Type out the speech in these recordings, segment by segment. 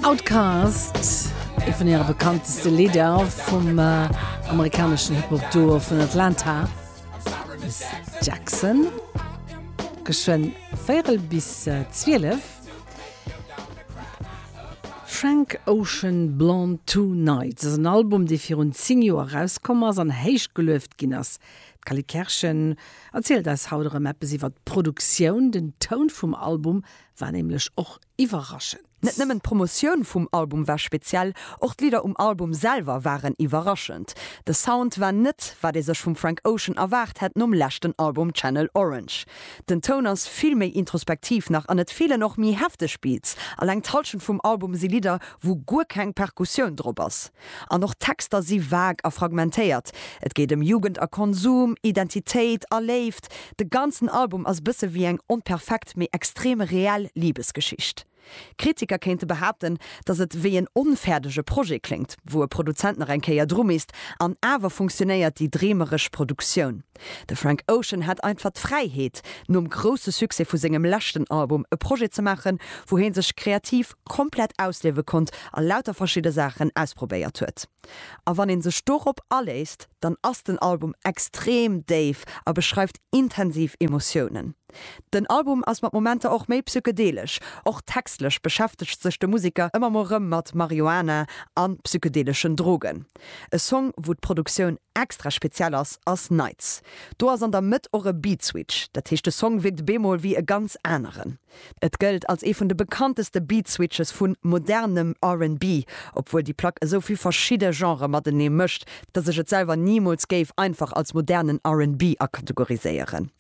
Outkast, ee vun hire bekannteste Lidder vum amerikaneschen Hip-Hop-Duo vun Atlanta, Miss Jackson. Geschwënn véierel bis zwielef. Frank Ocean, Blonde Two Nights ass en Album, dee virun zéng Joer erauskomm ass an héich gelueft ginn ass. D'Cally Kerschen erzielt eis haut erëm eppes iwwer d'Produktioun. Den Toun vum Album war nämlech och iwwerraschend. Net nëmmen d'Promotioun vum Album war speziell, och d'Lidder um Album selwer waren iwwerraschend. De Sound war net, wat ee sech vum Frank Ocean erwaart hätt nom leschten Album Channel Orange. Den Toun ass vill méi introspektiv nach an et feelen och méi hefteg Beats. Alleng d'Hallschent vum Album si Lidder, wou guer keng Perkussioun drop ass. An och d'Texter si vague a fragmentéiert. Et geet ëm Jugend a Konsum, Identitéit a Léift. De ganzen Album ass e bësse wéi eng onperfekt, mee extrem reell Libesgeschicht. Kritiker kéinte behaapten, datt et wéi en onfäerdege Projet kléngt, wou e Produzent nach eng Kéier dru misst. An awer funktionéiert déi dreemeresch Produktioun. De Frank Ocean hat einfach d'Fräiheet, nom grousse Succès vu sengem leschten Album e Projet ze maachen, wou hie sech kreativ komplett ausliewe konnt a lauter verschidde Saachen ausprobéiert huet. A wann ee sech dorop aléisst, dann ass den Album extrem déif a beschreift intensiv Emotiounen. Den Album ass mat Momenter och méi psychedelesch. Och textlech beschäftegt sech de Museker ëmmer mol rëm mat Marihuana a psychedeleschen Drogen. E Song, wou d'Produktioun Extra speziell ass ass Nights. Do ass an der Mëtt och e Beat Switch, dat heescht de Song wierkt bemol wéi e ganz aneren. Et gëllt als ee vun de bekannteste Beat Switches vu modernem RnB, obwuel déi Plack esou vill verschidde Genre matenee mëscht, dass ech et selwer nimools géif einfach als modernen RnB akategoriséieren.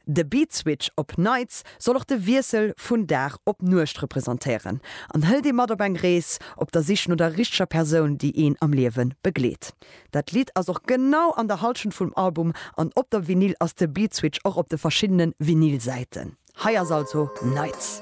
De Beat Switch op Nights soll och de Wiessel vun Dag op Nuecht representéieren an hëlt ee mat op eng Rees op der Sich no der richteger Persoun, déi een am Liewe begleet. Dat Lidd ass och genau an der Halschent vum Album an op der Vinyl ass de Beatswitch och op de verschiddene Vinyl-Säiten. Hei ass also Nights.